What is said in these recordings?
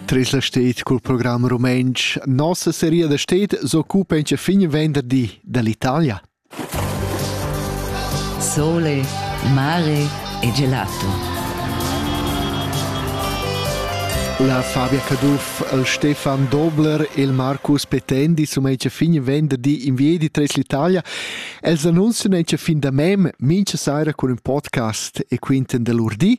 Tres la stet cul program rumentsch nossa seria da stet s'occupa in fin venderdi dall'Italia. Sole, mare e gelato. La Fabia Caduff, il Stefan Dobler e il Marcus Petendi sono in fin venderdi in via di Tres l'Italia. Els annunciano in fin da mem mincha saira con un podcast e quinten dell'urdi.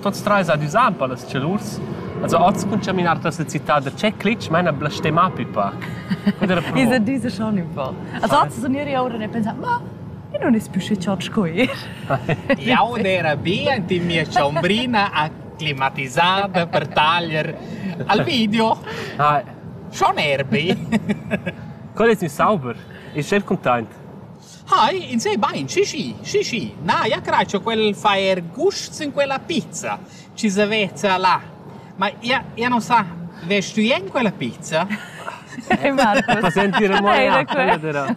Tuots trais han üsà ün po las chalurs. Also hoz cun chaminar tras la città da Tscheclitsch maina blastemmà pipa. I sa disa schon ün po. Also hoz sun iri oura e pensà, ma eu non es pü schi chod sco ir. Jau era bien in mia chambrina acclimatisada per taglier al video. Hi. Schon erbi. Qual es in sauber? Ist sehr content. Hai, ins ei bein, schi schi, schi schi. Na, ja craj cha quel fa eir gusts in quella pizza chi s'aveza là. Ma ja, ja non sa, vest tü in quella pizza? Ehi Marcus. Ma sentire mo ja, quella dera.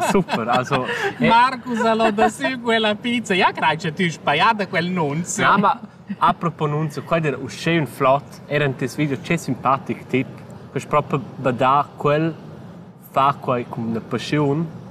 Super, also. eh. Marcus allora da sü quella pizza. Ja craj cha tü spaiada quel nunz. Na, ma apropos nunz, quai era uschè ün flot, era in tes video che simpatic tip, che es propi badà quel far quai cun passiun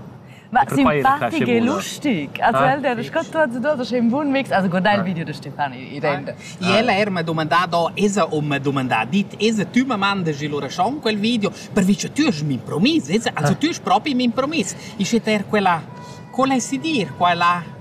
Ma simpatico e lustig. Also ah. el ha discusso tutti e due, c'è un buon mix. Also guardai il ah. video di Stefani. E ella era mi ha domandato, esa o mi ha domandato, dit, esa tu mi mandaci l'orascion quel video, perché tu hai mi promesso, esa, also tu hai proprio mi promesso. E c'è er quella, quella si dir, quella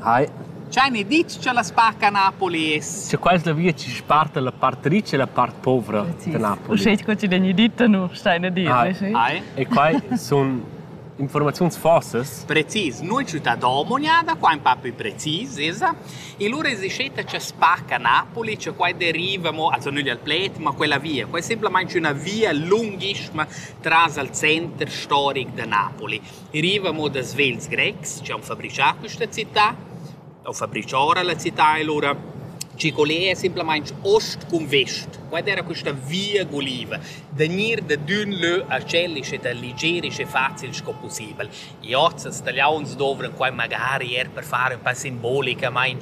Hai. Ch'hain e dit cha la spacca Napoli es. Cha quaista via chi sparta la part ricca e la part povra da Napoli. Uschè co chi l'hegni dit, nu stain a dir. Hai. E quai sun informaziuns forses. Precis, noi città d'Omonia, da qua un po' più precis, esa. E lura esiscetta c'è spacca Napoli, cioè qua deriva, mo, also nügli al pled, ma quella via. Qua è semplamente una via lunghissima tras al center storic da Napoli. I riva mo da svelts grecs chi han fabrichà quista cità, u fabrichà ora la cità e lura. Chi quel è simplamaing ost cun vest. Quai d'eira quista via guliva, da gnir da d'ün lö a tschel isch ed a liger isch e facil sco pussibel. I hoz als Taliauns dovran quai magari eir per far ün pa simbolica, main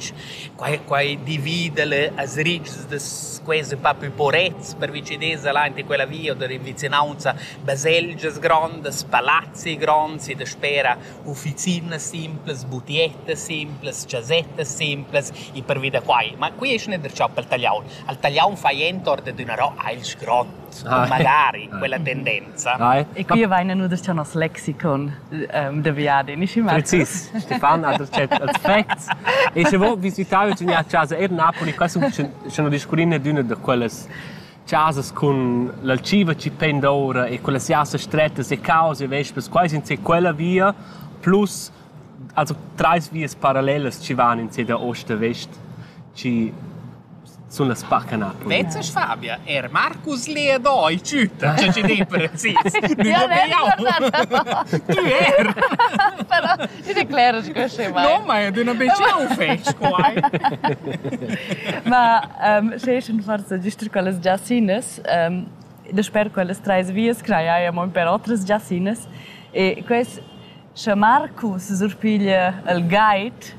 Quai quai divida le as ritgs da quels ün pa plü porets pervi chi desa là ante quella via da vicinanza baselgias grondas, palazzi gronds e daspera ufficinas simplas, butiettas simplas, chasettas simplas e pervi da quai. Ma qui es ün interessant pel tagliaun. Al tagliaun fai ent or dad üna ro ailch grond. magari quella tendenza. Rai. E qui vaina nu das nos lexicon um, da viadi, nischi mat. Precis, Stefan ha dat cert aspects. E se vo visitare tg'nia chasa er Napoli, qua sun scena discurrine d'una da quellas chasas con l'alciva ci penda ora e con le siase strettas e cause e vespes, quai in se quella via plus also treis vias parallelas ci van in se da ost a vest ci sun las parca Napoli. Vezes Fabia, er Marcus Lea doi tschütta, tschè chi di precis. Nü ho be jau. Tü er. Però i decleras che sche mai. No, ma ed üna be ciao fetsch quai. Ma um, sche eschen forza giuster quellas giassinas, um, da sper quellas treis vias craiaiam per otras giassinas e quest sche Marcus surpiglia il guide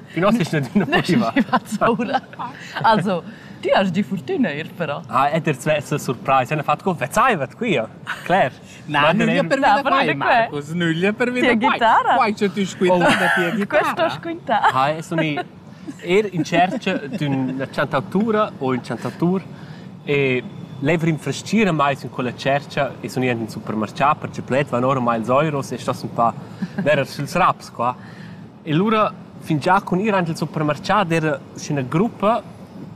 Also, ti has di fortuna ir però. Ah, è der svessa surprise, hanno fatto conversaivat qui. Claire. Na, nüglia per vita quai, Marcus, nüglia per vita quai. guitarra? Quai c'è tu squintà da tia guitarra. Questo squintà. Ah, e sono er in cerca d'una chantatura o un chantatur e lever infrascira mai in quella cerca e sono in supermercato perché pled van ormai ils euros e sto un po' ver ils raps qua. E lura fingià cun ir aint il supermarchà d'eira üschüna gruppa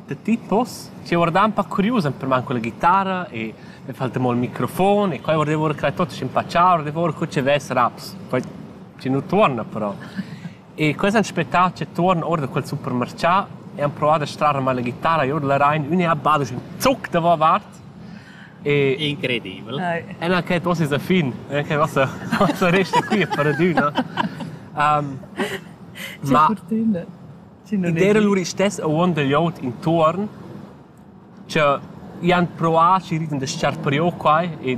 da tipos chi guardan pa curius ün per man culla ghitarra e e fa'l tremol il microfon e qua guardevo cur ch'el tuot schimpaccià, guardevo cur co chi vess raps. Poi chi nu tuorna però. E quels han aspettà cha tuorn our da quel supermarchà e han provà da strar mal la ghitarra e our da la rain, ün e ha bado ün zuch davovart E incredibel. Ella che tu sei a fin, eh, che nossa nossa resta qui per adüna. Um, ma der lur stess a uon del iot intorn che ian proa ci riden de sciar prio quai e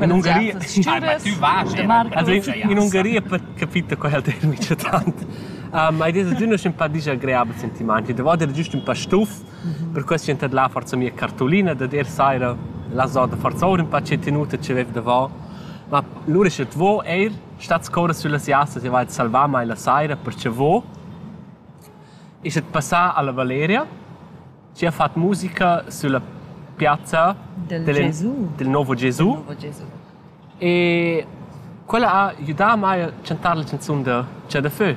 In Ungaria Ai, ma tü vas Also in Ungaria capita quel termine c'è tant. Ma id es adüna ün pa disagreabel sentimaint. I deva der giust ün pa stuf, per questo ch'ün tadlà forsa mia cartolina, da der saira la zoda forsa our ün pa che tenuta che vev davò. Ma lura sche vo eir stat scorra süllas jassas e va salvà mai la saira perche vo. Isch passà alla Valeria Chi ha fat musica sülla piazza dal nouvo Gesu. E quella ha gnüdà a mai a chantar la chanzun da Chà da fö.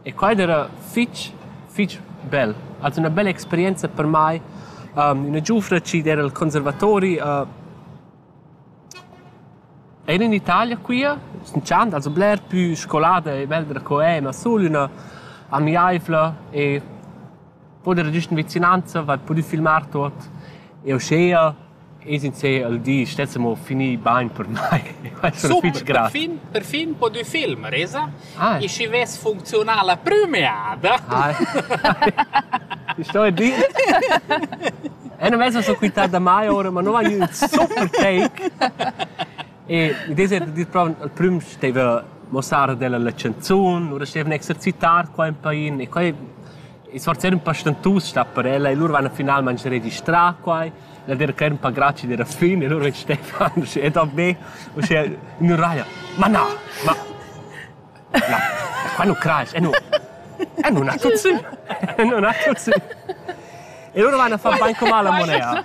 E quai d'eira fich, fich bel. Also üna bella experienza per mai, üna giufra chi d'eira al conservatori. Eir in Italia quia sun dschand also bler pü scolada e belda co eu, ma sul üna amiaivla e Cun era giust vicinanza va pudü filmar tuot. E uschea es insè al di stess amo finì bain per mai. Es ün fich Super, grat. perfin, perfin pudü filmar, esa? Ah. E schi vess funcziunà la prümeada. Ah. Ich sto a dir. E non vesa so quità da mai ora, ma no ha gnü ün super take. E mi dese da dir prova al prüm steva mossar della la chanzun, ora stevene exercitar qua in pain e qua e sforzar ün pa stentus stat per ella e lur van finalmaing registrà quai. La Dera Cler ün pa grazia d'eira fin e lur ven Stefan uschè ed ov be uschè ün raia. Ma na, ma na, qua nu crasch, e nu e nu na tuzzü, e nu na tuzzü. E lur van a far bain com la monea.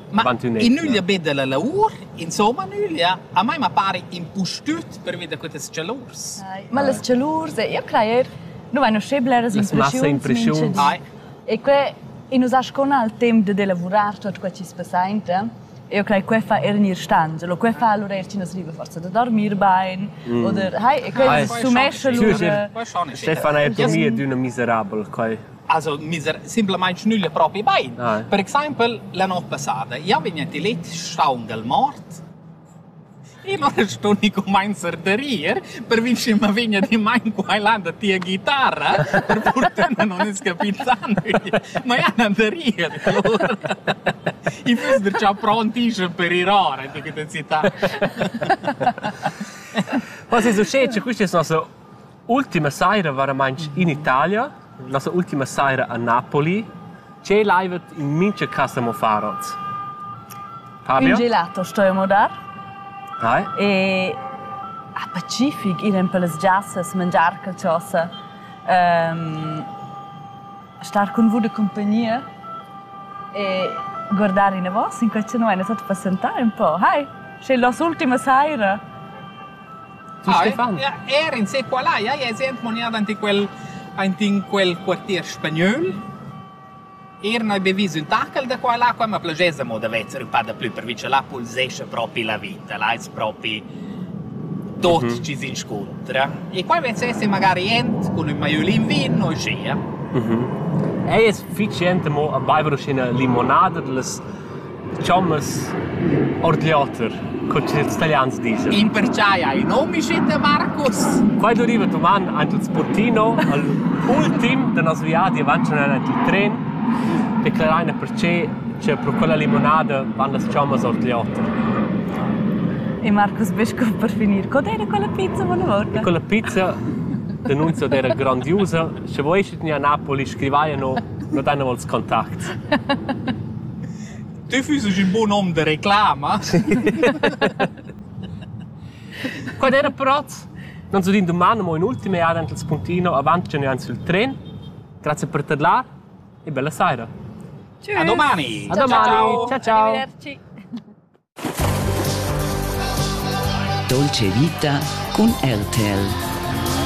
Ma in nüglia be da la laur, insomma nüglia, a mai ma pari impustüt pervi da quatas chalurs. Ma las chalurs, io crajer, nu vain uschè bleras impreschiuns. E que in usà scona al temp da elavurar tuot quai chi's passainta. Io crei que fa er gnir stangia. Lo que fa allura er chi non riva forsa da dormir bain mm. oder hai e que ah, sumescia lura. Stefan ha dormir d'üna miserabel coi. also miser simplamain schnüglia propi bain. Dai. Per exaimpel la not passada. Ja vegna ti let schaung al mort e non sto ni comencer da rir per vi che ma vegna di mein quailanda tia guitarra per portenda non es capitan ma ja nan da rir allora i füss der già pronti schon per ir ora di che città Was ist so schön, queste sono so Ultima saira varamaing in Italia, nossa ultima saira a Napoli. Che laivet in mincha casa mo far hoz? Fabio? Un gelato stoimo dar. Hai? E a Pacific ir in pellas giassas, mangiar calciosa. Ehm, star cun vus de compagnia e guardare in vos in quel che non è stato passentare un po'. Hai, c'è la ultima saira. Er in sez qual hai? Ai es jent monià dant in quel aint in quel quartier spagnöl. Er n'hai be vis ün tachel da qua e là, qua ma plaschesa mo da vezer ün pa daplü pervi cha là pulsescha propi la vita, là es propi tot chi s'inscuntra. E qua vez esser magari jent cun ün maiolin vin o uschea. Ei es fich jent amo a baiver uschè 'na limonada da las Chommas ord l'oter, co ch'ils Italians disan. In pertgei ei Nomicete, Marcus? Quei deriva doman ein tuts Portino al ultim da nos viadi avanti avanti il tren declarar ina pertgei che pro quella limonada van las chommas ord l'oter. E Marcus Besco per finir, co era quella pizza vola vorta? Quella pizza denunzia era grandiosa, se vuoi che a Napoli scrivaiano, non danno volts kontakt. Tü füsses ün bun hom da reclama? Quant era prats? Nans udin duman amo ün'ultima jada aint il spuntino avant cha nus ain sül tren. Grazia per tadlar e bella saira. A domani! A domani! Ciao ciao! Arrivederci. Dolce vita con RTL.